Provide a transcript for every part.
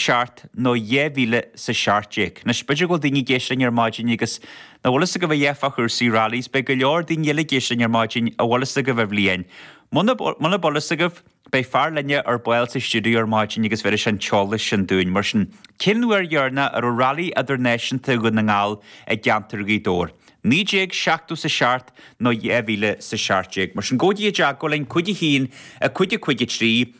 seacht nó dhá mhíle is a seacht déag. Anois, b'fhéidir go bhfuil daoine ag éisteacht linn ar maidin agus nach bhfuil fhios agaibh a dhath fá chúrsaí rallies, beidh go leor daoine eile ag éisteacht linn ar maidin a bhfuil fhios agaibh an bhliain. Muna, muna bhfuil fhios agaibh, beidh fear linne ar ball sa stiúideo ar maidin agus bhéarfaidh sé an t-eolas sin dúinn. Mar sin, cén uair a dhéarna, a raibh rally idirnáisiúnta Dhún na nGall i gceantar Ghaoth Dobhair? 1970 is a seacht nó dhá mhíle is a seacht déag. Mar sin, cuir téacs chugainn, cúig a haon, a cúig, a cúig a trí,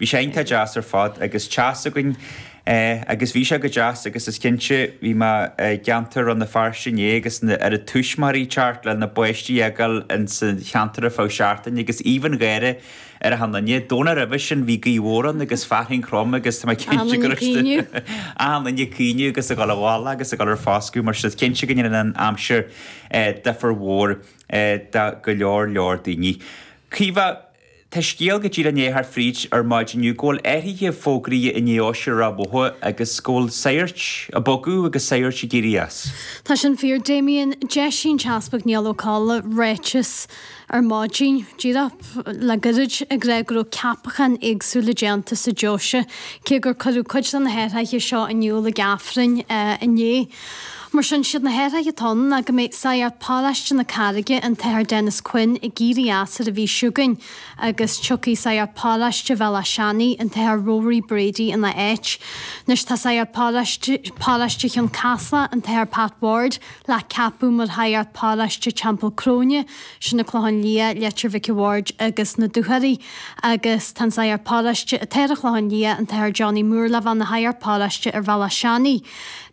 Bhí sé iontach deas ar fad agus teas againn agus bhí sé go deas agus is cinnte bhí mé i gceantar Rann na Feirste inné agus an oiread tuismitheoirí ag teacht lena bpáistí a fhágáil ins an cheantar ar feadh seachtaine agus aoibh an gháire ar achan nduine. Domhnach roimhe sin bhí gaoth mhór ann agus fearthainn throm agus tá mé cinnte go raibh achan nduine ag caoineadh agus ag dul abhaile agus ag dul ar foscadh mar sin is cinnte go ndéanann an aimsir difear mór do go leor leor daoine. Caoimhe. Tá scéal ag teacht díreach isteach fríd ar maidin inniu go bhfuil athruithe fógraithe i ndeoise Ráth Bhoth agus go bhfuil sagairt ag bogadh agus sagairt ag éirí as. Tá sin fíor Damien d'eisigh an tEaspag Niall Ó Colla ráiteas ar maidin díreach le goirid ag rá go raibh ceapacháin éagsúla déanta sa deoise cé gur cuireadh cuid de na hathruithe seo in iúl ag Aifreann inné. Mar sin, is iad na hathruithe atá ann ná go mbeidh Sagart Paráiste na Carraige, an tAthair Denis Quinn, ag éirí as ar an mhí seo chugainn agus tiocfaidh Sagart Paráiste Bhéal Átha Seanaigh, an tAthair Rory Brady, ina áit. Anois tá Sagart Paráiste Chionn Caslach, an tAthair Pat Ward, le ceapadh mar Shagart Paráiste Theampall Cróine, sin an Clochán Liath, Leitir Mhic an Bhaird agus an Dúchoraidh, agus tá an Sagart Paráiste atá ar an Chlochán Liath, an tAthair Johnny Moore, le bheith ina Shagart Paráiste ar Bhéal Átha Seanaigh.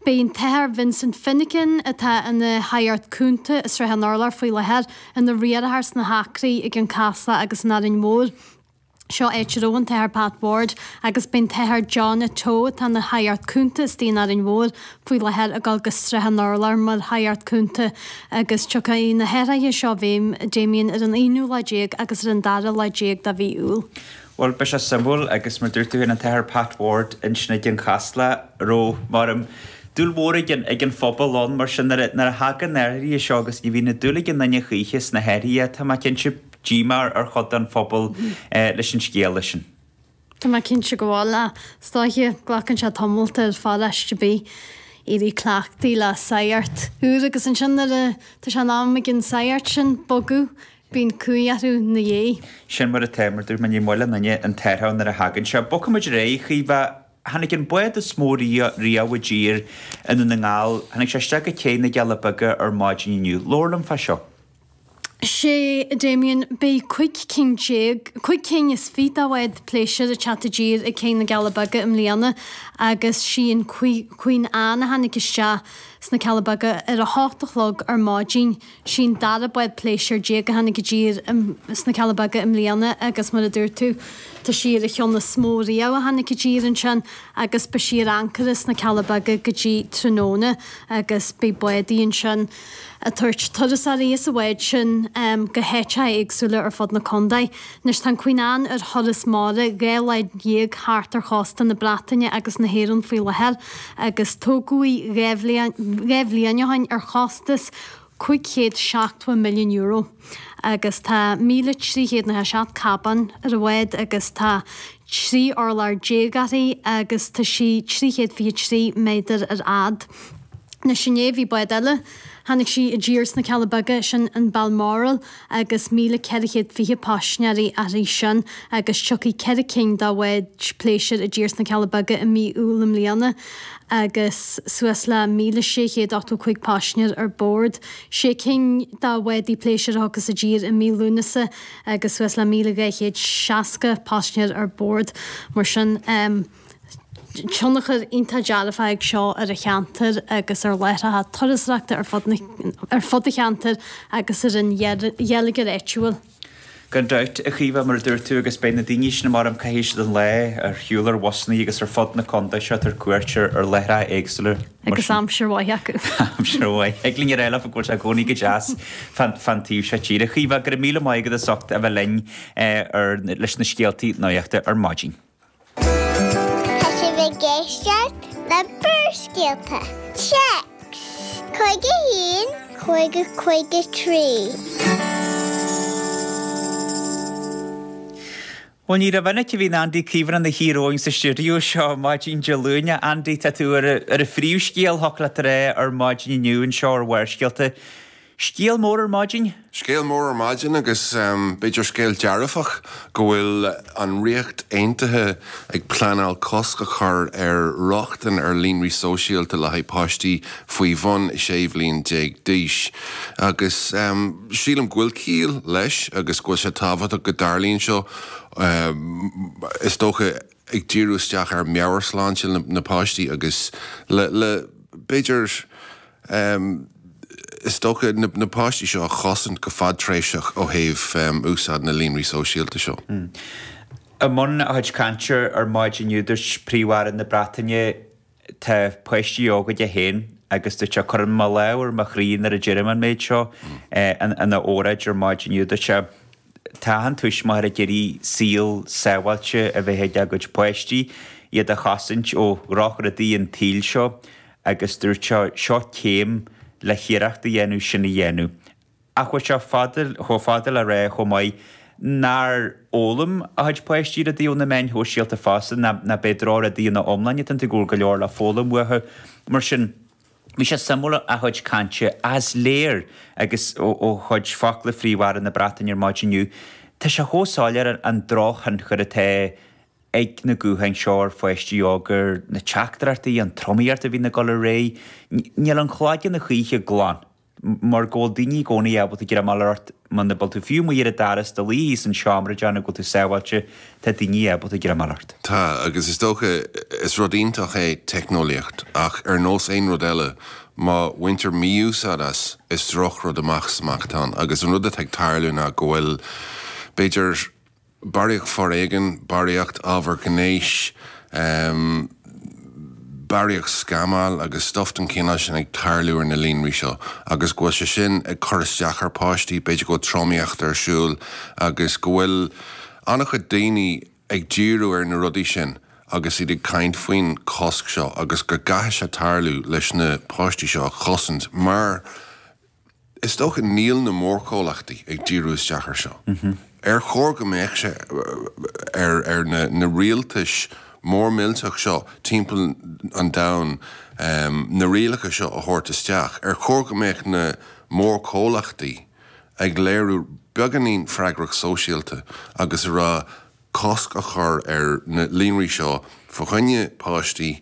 Beidh an tAthair Vincent Finnegan, atá ina shagart cúnta i Srath an Urláir faoi láthair, ina riarthar sna hAcraí, i gCionn Caslach agus in Árainn Mhór. Seo áit a raibh an tAthair Pat Ward agus beidh an tAthair John Atto, atá ina shagart cúnta istigh in Árainn Mhór, faoi láthair ag dul go Srath an Urláir mar shagart cúnta agus tiocfaidh na hathruithe seo i bhfeidhm, Damien, ar an aonú lá déag agus ar an dara lá déag de mhí Iúil. Bhuel, beidh sé suimiúil agus mar dúirt tú féin an tAthair Pat Ward ansin i gCionn Caslach a raibh, m'anam, dúil mhór ag an, ag an phobal ann. Mar sin nuair a, nuair a thagann na hathruithe seo agus ní bhíonn dúil ag aon duine choíche sna hathruithe, tá mé cinnte, díomá ar, ar chuid den phobal leis an scéal sin. Tá mé cinnte go bhfuil. Ach, is dóiche, glacann sé tamalt orthu siúd a bheith ag éirí cleachta le sagart úr agus ansin nuair a, tá sé in am ag an sagart sin bogadh Bíonn cumhaidh orthu 'na dhiaidh. Sin mar atá, mar dúirt mé, ní mbuaileann éinne an t-aer thall nuair a thagann sé. Bogfaimid ar aghaidh, a Chaoimhe. Tháinig an bád is mó riamh, riamh i dtír i nDún na nGall. Tháinig sé isteach go céidh na gCealla Beaga ar maidin inniu. Labhair liom fá seo. Sea, a Damien, beidh cúig cinn déag, cúig cinn is fiche de bháid pléisiúir ag teacht i dtír ag céidh na gCealla Beaga i mbliana agus sí an Queen Anne a tháinig isteach sna Cealla Beaga ar a hocht a chlog ar maidin. Sí'n dara bád pléisiúir déag a tháinig i dtír sna Cealla Beaga i mbliana agus mar a dúirt tú tá sí ar an cheann is mó riamh a tháinig i dtír ansin agus beidh sí ar ancaire sna Cealla Beaga go dtí tráthnóna agus beidh bádaí ansin ag tabhairt turasóirí as an bhád sin go háiteacha éagsúla ar fud na contae. Anois tá an Queen Anne ar thuras mara dhá lá dhéag thart ar chósta na Breataine agus na hÉireann faoi láthair agus tógadh í dhá bhliain ó shin ar chostas cúig chéad seachtó milliún euro agus tá míle trí chéad nócha a seacht cábán ar an bhád agus tá trí urlár déag uirthi agus tá sí trí chéad fiche trí méadar ar fhad. Anois inné bhí bád eile tháinig sí i dtír sna Cealla Beaga, sin an Balmoral, agus 1,420 paisinéirí uirthi sin agus tiocfaidh ceithre cinn de bháid pléisiúir i dtír sna Cealla Beaga i mí Iúil i mbliana agus suas le 1,685 paisinéir ar bord. Sé cinn de bhádaí pléisiúir a thiocfas i dtír i mí Lúnasa agus suas le 1,260 paisinéir ar bord. Mar sin. tionchar iontach dearfach ag seo ar an cheantar agus ar láithreacha turasóireachta ar fud an cheantair agus ar an gheilleagar áitiúil. Gan dabht, a Chaoimhe, mar a dúirt tú, agus beidh na daoine sin a maireann caith aois den lá ar shiúl ar bhusannaí agus ar fud na contae seo ag tabhairt cuairt ar láithreacha éagsúla, mar sin. Agus aimsir mhaith acu. Aimsir mhaith. Thig linn a rá leo go bhfuil sé i gcónaí go deas fán taobh seo tíre. A Chaoimhe, go raibh míle maith agat as ucht a bheith linn leis na scéaltaí nuachta ar maidin. Tá sibh ag éisteacht le Barrscéalta, téacs, cúig a haon, cúig a cúig a trí. Bhuel ní rómhinic a bhíonn Andy Caomhánach ina shuí romhainn sa stiúideo seo maidin Dé Luain. Andy, tá tú ar an phríomhscéal, thiocfadh leat a rá, ar maidin inniu anseo ar Bharrscéalta. Scéal mór ar maidin. Scéal mór ar maidin agus b'fhéidir scéal dearfach go bhfuil an Ríocht Aontaithe ag pleanáil cosc a chur ar rochtain ar líonraí sóisialta le haghaidh páistí faoi bhun 16 bhliain d'aois agus sílim go bhfuil ciall leis agus go bhfuil sé tábhachtach go dtarlaíonn seo. Is dócha. ag díriú isteach ar mheabhairshláinte na páistí agus le b'fhéidir is dócha na páistí seo a chosaint go fadtréimhseach ó thaobh úsáid na líonraí sóisialta seo. I mbun a chuid cainte ar maidin inniu dúirt príomh-aire na Breataine, tá páistí óga aige féin agus dúirt sé, cuirim mo lámh ar mo chroí nuair a deirim an méid seo ina óráid ar maidin inniu dúirt sé. Tá achan tuismitheoir ag iarraidh saol sábháilte a bheith ag a gcuid páistí, iad a chosaint ó dhrochrudaí an tsaoil seo agus dúirt sé, seo céim le hiarracht a dhéanamh sin a dhéanamh. Ach chuaigh sé chomh fada le rá chomh maith nár fhoghlaim a chuid páistí rudaí ó na meáin shóisialta fosta, nach b'é drochrudaí ina iomláine atá ann go bhfuil go leor le foghlaim uathu. Mar sin, bhí sé suimiúil a chuid cainte ach is léir agus ó chuid focla Phríomh-Aire na Breataine ar maidin inniu, tá sé chomh soiléir an drochthionchar atá ag na gutháin seo ar pháistí óga, na teachtaireachtaí, an tromaíocht a bhíonn ag dul ar aghaidh. Níl an cloigeann a choíche glan. mar go bhfuil daoine i gcónaí ábalta greim a fháil ort muna bhfuil tú fiú. Má dhírigh d'fhearas do luí thíos an seomra i dteannta go bhfuil tú sábháilte, tá daoine ábalta greim a fháil ort. Tá, agus is dócha, is rud iontach é teicneolaíocht, ach ar nós aon rud eile, má bhaintear mí-úsáid as, is drochrud amach is amach atá ann. Agus an rud atá ag tarlú ná go bhfuil, b'fhéidir, barraíocht foréigin, barraíocht ábhar gnéis, barraíocht scamáil agus stuif den chineál sin ag tarlú ar na líonraí seo agus go bhfuil sé sin ag cur isteach ar pháistí, b'fhéidir go bhfuil tromaíocht ar siúl agus go bhfuil an-chuid daoine ag díriú ar na rudaí sin agus iad ag caint faoin chosc seo agus go gcaithfidh sé tarlú leis na páistí seo a chosaint mar Is dócha níl na mórchomhlachtaí ag díriú isteach air seo. Ar chóir go mbeadh sé ar na rialtais mór millteach seo timpeall an domhain na rialacha seo a thabhairt isteach? Ar chóir go mbeadh na mórchomhlachtaí ag léiriú beagáinín freagracht sóisialta agus a rá cosc a chur ar na líonraí seo fá choinne páistí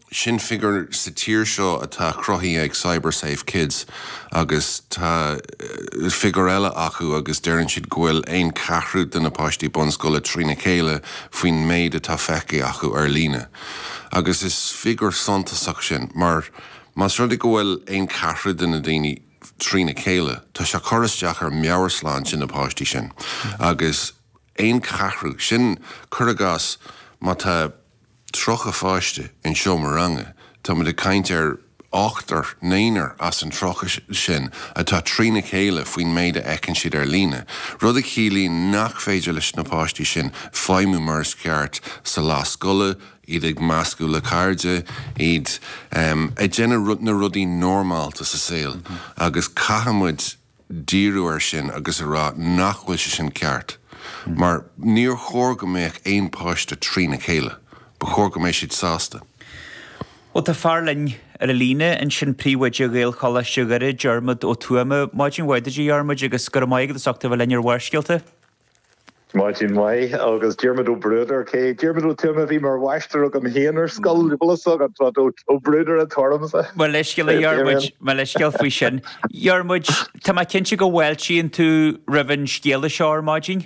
Sin figiúr sa tír seo atá cruthaithe ag CyberSafe Kids agus tá figiúr eile acu agus deireann siad go bhfuil aon ceathrú de na páistí bunscoile trína chéile faoin méid atá feicthe acu ar líne. Agus is figiúr suntasach sin mar más rud é go bhfuil aon cheathrú de na daoine trína chéile tá sé ag cur isteach ar mheabhairshláinte na páistí sin agus aon cheathrú, sin cur i gcás má tá. 30 pháiste in seomra ranga, táimid ag caint ar ochtar, naonúr as an 30 sin atá trína chéile faoin méid a fheiceann siad ar líne, rud a chiallaíonn nach féidir leis na páistí sin feidhmiú mar is ceart sa lá scoile, iad ag meascadh le cairde, iad ag déanamh na rudaí normálta sa saol agus caithfidh muid díriú ar sin agus a rá nach bhfuil sé sin ceart mar níor chóir go mbeadh aon páiste trína chéile. Ba chóir go mbeidh siad sásta. Bhuel tá fear linn ar an líne ansin, Príomhoide Ghaelcholáiste Dhoire, Diarmaid Ó Tuama. Maidin mhaith duit, a Dhiarmaid, agus go raibh maith agat as ucht a bheith linn ar Bharrscéalta. Maidin mhaith agus Diarmuid Ó Bruadair is é Diarmuid Ó Tuama a bhí mar mháistir agam féin ar scoil, bhí boladh sa agat fad Ó Bruadair atá ormsa. Mo leithscéal a Dhiarmuid, mo leithscéal faoi sin. A Dhiarmuid, tá mé cinnte go bhfáiltíonn tú roimh an scéala seo ar maidin.